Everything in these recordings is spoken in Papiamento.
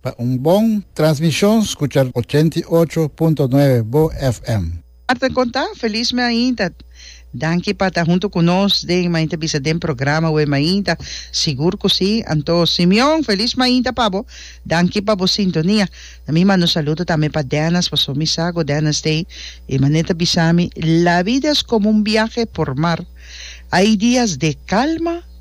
Pa un bon transmishon skucha ochenta i ocho punto nuebe bo FM. Marta Contá, Feliz me ainta. Danki pa ta hunto cu nos den mainta bisa den programa we mainta. Sigur cu si. Anto Simeon, Feliz mainta pa bo. Danki pa bo sintonia. Na mi manda un saludo tambe pa Dennis paso mi sa cu Dennis t'ei. E mane ta bisa mi, La vida es como un viaje por mar. Hay dias de calma.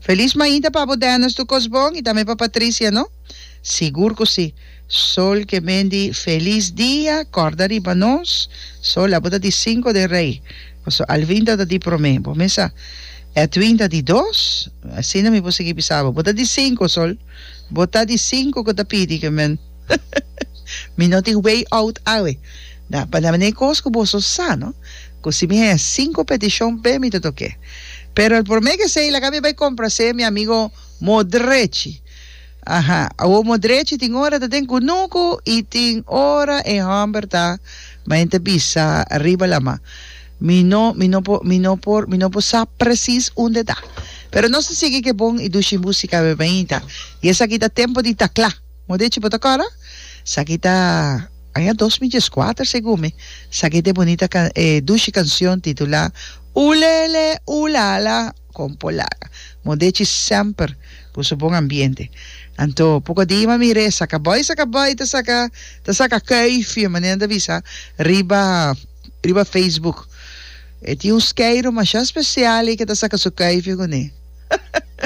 Feliz mainta pa bo Dennis tu kos bon y tambe pa Patricia no? Sigur cu si. Sol ke men di Feliz dia corda riba nos Sol abo ta di cinco den rey paso Alvinda ta di prome bo mesa Edwin ta di dos asina mi por sigui bisa bo bo ta di cinco Sol bo ta di cinco cu ta pidi ke men Mi no tin way out awe. Na pa name ne cos cu boso sa, no? Cu si mi haya cinco peticion pe mi ta toke. Pero el por me ke say laga mi bay compra say mi amigo Modrechi. Aha, awo Modrechi tin ora ta den cunucu y tin ora e homber ta ma en ta bisa riba lama. Mi no, mi no por, mi no por, mi no por sa precies unde ta. Pero nos ta sigui ke bon y dushi musica awe bainta. Y esaki ta tempo di tacla. Modechi bo ta kora? Saki ta aña dos mi dieskuater segun mi. Saki ta e bunita kan e dushi kansion titulá Ulele ulala kon por laga Modechi semper ku su bon ambiente. Anto poko di ma mir'é saka bòi saka bòi ta saka ta saka kuifie manera nan ta bisa riba riba Facebook. E tin un skeiro masha spesial ei ke ta saka su kuifie kuné.